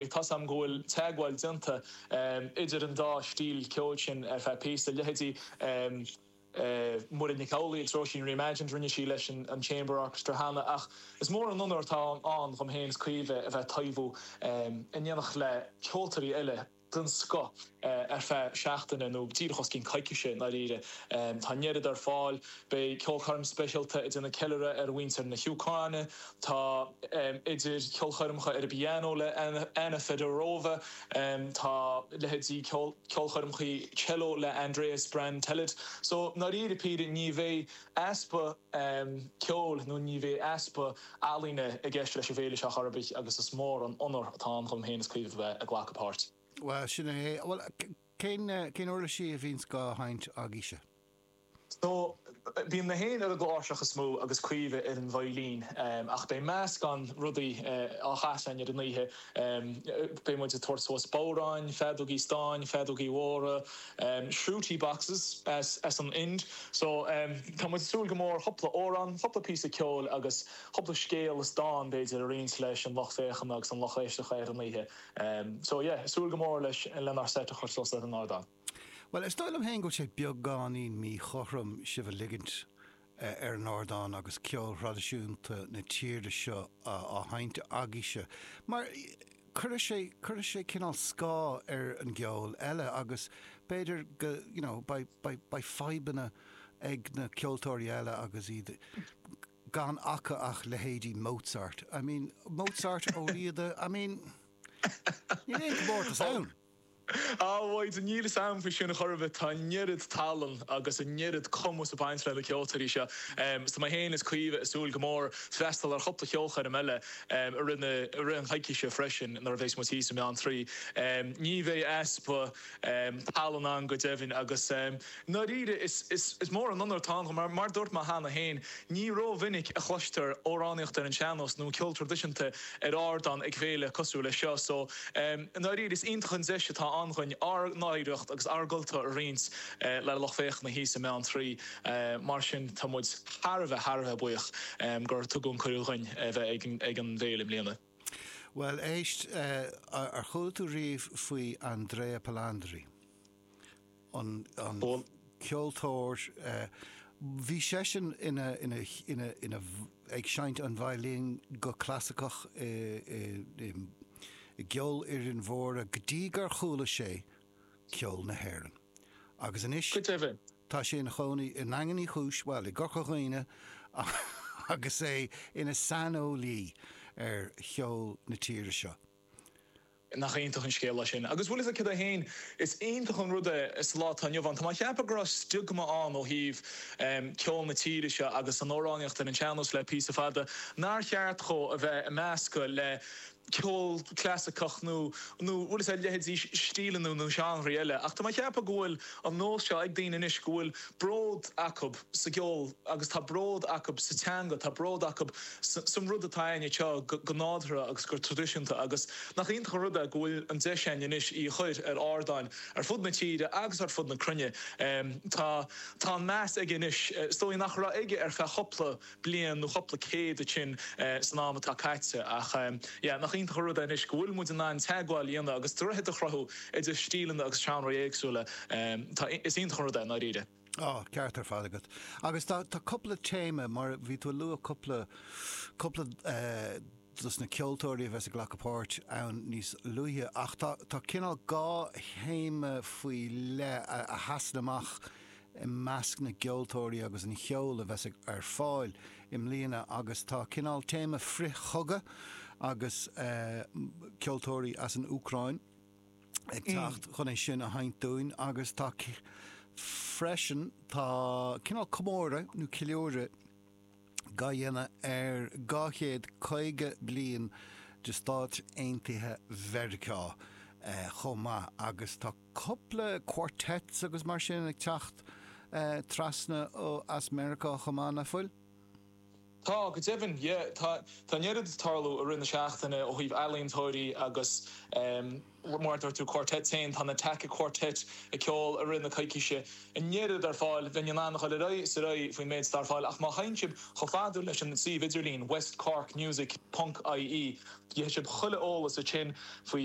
ag taispeáint go bhfuil teagmháil á déanamh idir an dá stíl ceoil sin ar feadh píosa, leithéidí Muireann Nic Amhlaoibh agus Róisín Reimagined, rinne sí leis an Chamber Orchestra cheana, ach is mór an onóir atá ann dom féin is Caoimhe a bheith ag taibhiú i n-éineacht le ceoltóirí eile den scoth. ar feadh seachtaine nó díreach os cionn coicíse i ndáiríre. Tá an oiread ar fáil, beidh ceolchoirm speisialta ag déanamh ceiliúradh ar mhuintir na hÚcráine, tá idir cheolchoirmeacha ar an bpianó le Anna Fedorova, tá leithéidí ceolchoirmeacha cello le Andreas Brantelid, só i ndáiríre ní bheidh easpa ceoil nó ní bheidh easpa ealaíne i gceist leis an bhféile seo ar chor ar bith agus is mór an onóir atá ann dom féin is Caoimhe a bheith ag glacadh páirt. Bhuel, sin é. Bhuel, cén, cén uirlisí a bhíonns dhá sheinnt agaíbhse? So, bíonn mé féin ar an gcláirseach is mó agus Caoimhe ar an veidhlín. Ach beidh meascán rudaí á gcasadh againn ar an oíche. Beidh muid ag tabhairt suas bodhráin, feadógaí stáin, feadógaí mhóra, shruti boxes as, as an Ind. So, tá muid ag súil go mór chupla amhrán, chupla píosa ceoil agus chupla scéal is dán, b'fhéidir, a roinnt leis an lucht féachana agus an lucht éisteachta ar an oíche. So, yeah, súil go mór leis lenár seit a chur suas ar an ardán. Bhuel, is dóigh liom féin go bhfuil sé beagáinín míchothrom sibh a ligint ar an ardán agus ceol thraidisiúnta na tíre seo á sheinnt agaíbhse mar cuirfidh sé, cuirfidh sé cineál scáth ar an gceol eile agus b'fhéidir go, you know, beidh, beidh, beidh fadhbanna ag na ceoltóirí eile agus iad ag, gan acu ach leithéidí Mozart, I mean, Mozart, Ó Riada, I mean, níl aon chomórtas ann! Á, a Mhaidhc, níl fhios a'm faoi sin ar chor ar bith, tá an oiread tallann agus an oiread cumas ag baint le na ceoltóirí seo, so tá mé fhéin is Caoimhe ag súil go mór freastal ar chupla cheolchoirm eile i rith na, i rith an choicíse freisin nuair a bhéas muid thíos i mBeantraí. Ní bhéidh easpa. tallann ann go deimhin agus i ndáiríre is mór an onóir atá ann dhuinn. Mar a dúirt mé cheana féin, ní rómhinic a chloistear amhránaíocht ar an sean-nós nó ceol traidisiúnta ar ardán ag féile cosúil leis seo so i ndáiríre is iontach an deis atá ann dhuinn ár n-oidhreacht agus ár gcultúr a roinnt le lucht féachana thíos i mBeantraí. Mar sin tá muid thar a bheith, thar a bheith buíoch gur tugadh an cuireadh dhuinn a bheith ag an bhféile i mbliana. Bhuel, éist, ar chuala tú riamh faoi Andrea Palandri? An ceoltóir, bhí seisean ina, ina, ina, ina, ag seinnt an veidhlín go clasaiceach i, i, i gceolfhoireann mhóra go dtí gur chuala sé Ceol na hÉireann. Agus anois, Go deimhin. tá sé ina chónaí i nDaingean Uí Chúis, bhuel, i gCorca Dhuibhne, agus é ina saineolaí ar cheol na tíre seo. Nach iontach an scéal é sin? Agus bhuel, is ag cead é féin. Is iontach an rud é sa lá atá inniu ann. Tá mé a cheapadh go raibh stiogma ann ó thaobh ceol na tíre seo agus an amhránaíocht ar an sean-nós le píosa fada, nár cheart dhó a bheith ag meascadh le ceol clasaiceach nó bhuel is a leithéidí stíleanna nó seánraí eile ach tá mé a cheapadh go bhfuil an nós seo ag daoine anois go bhfuil bród acu sa gceol agus tá bród acu sa teanga, tá bród acu san rud atá againn anseo go nádurtha agus go traidisiúnta agus nach iontach an rud é go bhfuil an deis againn anois í a chur ar ardáin ar fud na tíre agus ar fud na cruinne. Tá an meas aige anois is dóigh nach raibh aige ar feadh cúpla bliain nó cupla céad duit sin san am atá caite ach yeah nach iontach an rud é anois go bhfuil muid in ann teagmháil a dhéanamh agus droichead a chruthú idir stíleanna agus seánraí éagsúla. Tá, is iontach an rud é, i ndáiríre. An ceart ar fad agat. Agus tá, tá cupla téama mar bhí tú ag lua cupla, cupla dos na ceoltóirí a bheas ag glacadh páirt ann níos luaithe ach tá, tá cineál dhá théama faoi leith a sheasann amach i measc na gceoltóirí agus an cheoil a bheas ar fáil i mbliana agus tá cineál téama frith-chogadh agus ceoltóirí as an Úcráin ag teacht chun é sin a sheinnt dúinn agus tá freisin tá cineál comóradh nó ceiliúradh dá dhéanamh ar dhá chéad caoga bliain de Stáit Aontaithe Mheiriceá chomh maith agus tá cupla quartets agus mar sin ag teacht trasna ó as Meiriceá chomh maith, nach bhfuil? Tá, go deimhin, yeah. Tá, tá an oiread ag tarlú i rith na seachtaine ó thaobh ealaíontóirí agus ehm, mar a dúirt tú, quartets féin, tá an Attacca Quartet ag ceol i rith na coicíse. An oiread ar fáil, bheinn in ann a dhul ar aghaidh is ar aghaidh faoin méid atá ar fáil ach má théann sibh chomh fada leis an suíomh idirlín westcorkmusic ponc ie, gheobhaidh sibh chuile eolas ansin faoi.